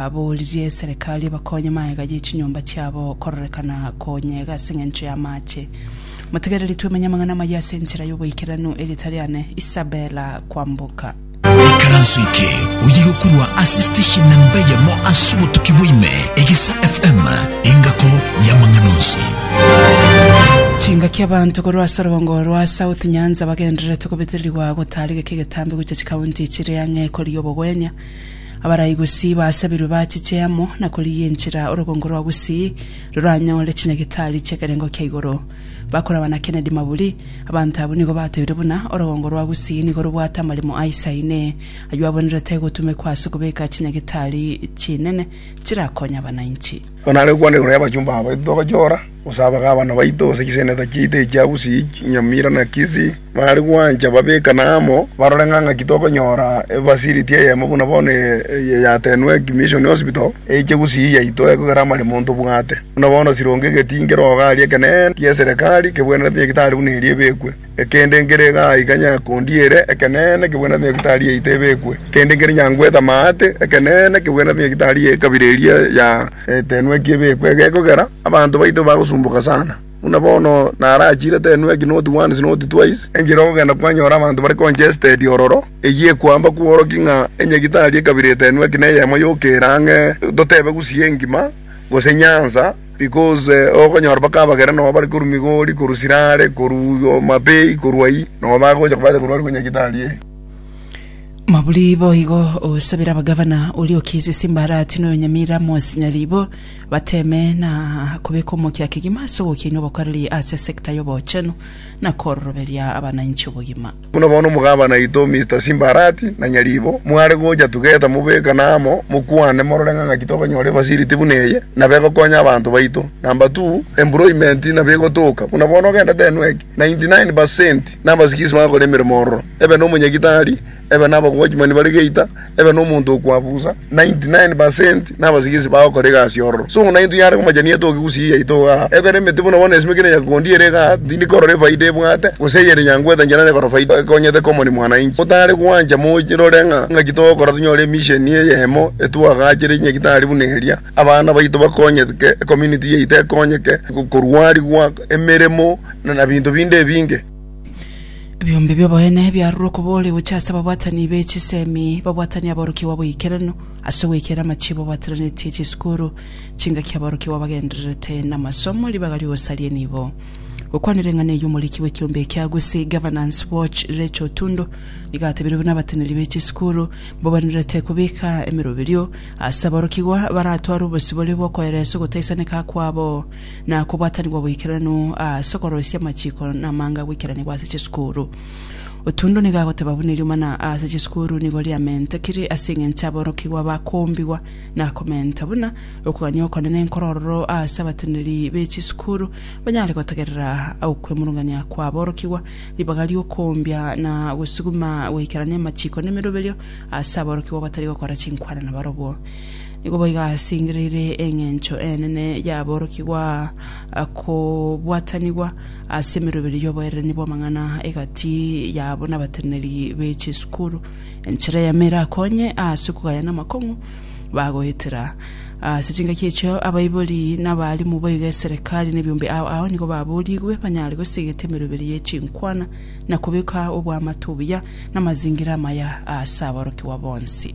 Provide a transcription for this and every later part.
Aboririe eserekari ebakonye magega ye chinyomba chiabo kororekana konyega ase engencho y'amaache. Motegereri twemenye amang'ana amayia ase enchera y'oboikeranu eria tari ane. Isabella kwamboka. Ekaranso eke oye gokurwa ase station namba eyemo ase obotuki bwa ime, Egesa FM, engako y'amang'ana onsi. Chingaki abanto korwa ase orobongo rwa South Nyanza bagendererete gobetererigwa gotaarigeka egetambe gochia chikaunti chire ang'e korigia obogwenia. Abarai gosii baasabirwe bachiche amo na korigia enchera orogongo rwa gosii roranyore chinyagitari chi'ekerengo kia igoro. Bakoraba na Kennedy Maburi, Abanto abwo nigo batebire buna orogongo rwa gosii nigo robwate amaremo aisaine, ayio abonerete gotumekwa ase okobeka chinyagitari chinene chirakonya abananchi. Onare gokwana igoro y'abachumba abo, etogochora. Gose abagabana baito, gose chiseneta chiaito echia Usi, Nyamira, na Kisi, baare gwancha babekane amo, barore ng'a ng'aki tokonyora efacility eyemo buna bono eye yatenwe ki Mission Hospital, eiche Gusii yaito ekogera amaremo ntobwate. Buna bono sironge egetinki rogo aria ekeneene, eke'eserekari, kebwenerete, egetari buna eria ebekwe. Ekende nkere iga aiga nyakondiere, ekeneene kebwenerete nyagitari yaito ebekwe. Ekende nkere nyangwete amaate, ekeneene kebwenerete nyagitari y'ekabira eria ya Etenweki ebekwe. Egekogera, abanto baito bagosumboka sana. Buna bono narachire Tenweki not once not twice, enchera ogogenda kwanyora abanto bare congested ororo, eyio ekoamba kworokia ng'a enyagitari y'ekabira Etenweki neyemo yokera ang'e, totebe gusii engima, gose nyansa, Because okonyora mpaka abagera noo bare korwa Migori, korwa Sirare, korwa Homabay, korwa ayio, noo bagocha kobata korwa aria Nyagitari ee. Maburi boigo osabire abagavana oria okiize Simbarati noyo Nyamira Amos Nyaribo bateme na kobeka omokia kegima ase ogokina obokoreri ase sector y'obochenu na kororoberia abanainchi obogima. Buna bono omogabana oito Mister Simbarati na Nyaribo mware gocha tugeta mobekane amo mokwane morore ng'a ng'aki tokonyora efacility buna eye nabo egokonya abanto baito. Number two, employment nabo egotoka buna bono ogenda tenwe ng'aki 99 percent nabasikisi bagokora emeremo ororo ebe nomonyagitari, ebe nabawochman bare geita, ebe nomonto okwabusa, 99 per cent nabasigisi bagokora egasi ororo. So naintwe yare komachani yaito ogegusia eye yaito iga aa. Ekero emete buna bono esimeke na nyakegondi ere iga aa, tindi korora efaida ebwate, gose eyere nyangwete inche naye korora faida ekonyete common mwananchi. Totare gwancha morore ng'a ngaki togokora tonyore emisheni eyemo etwagachire enyagitari buna eria, abana baito bakonyetke, ecommunity yaito ekonyeke, korwarigwa, emeremo, na binto binde ebinge. Ebiombe bi'oboene biarure okobooria gochia ase ababwatani be chisemi, babwatani aborokigwa bw'eikeranu, ase ogweikera amachibo abaateranetie chisukuru, chingaki aborokigwa bagendererete namasomo, ribaga ri'ogosaria enibo. Gokwana reng'ana eyio omoriki bw'ekiombe ekia Gusii Governance Watch Rachel Otundo nigo atebirie buna abateneri be chisukuru mbabanerete kobeka emeroberio ase aborokigwa baratware obosibore bw'okoeresa ogotaisaneka kwabo na kobwatanigwa oboikeranu ase okoroisia amachiko na amanga goikeranigwa ase chisukuru. Otundo nigo agoteba buna eriomana ase chisukuru nigo riamentekire ase engencho aborokigwa bakombigwa na komenta buna okogania okonene nkoro ororo ase abateneneri be chisukuru banyare gotegerera okwemurungania kwa aborokigwa ribaga riokombia na gosuguma goikerania amachiko na emeroberio ase aborokigwa batari gokora chinkwana na barobwo Nigo boigo asingereire engencho enene y'aborokigwa kobwatanigwa ase emeroberio y'oboererania bw'amang'ana egati yabo nabateneneri be chisukuru. Enchera eyemo erakonye ase okogayana amakong'u bagoetera. Ase chingaki echio abaibori na abarimu boigo eserekari na ebiombe ao ao nigo baborigwe banyare gosegeta emeroberio ye chinkwana na kobeka obwamate obuya na amazingira amaya ase aborokigwa bonsi.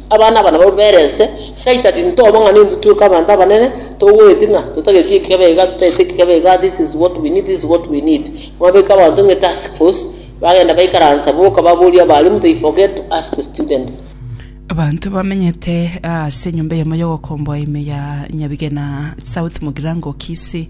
Abana aba nababwo bere ense, saita tinto obo ng'a ninto tweka abanto abanene, togoeti ng'a totageti ekebe iga totageti ekebe iga this is what we need this is what we need. Mwabeka abanto ng'a etask force bagenda baikaransa boka baboria abalimu they forget to ask the students. Abanto bamenyete ase enyomba eyemo y'ogokomboa ime ya Nyabigena South Mugirango Kisii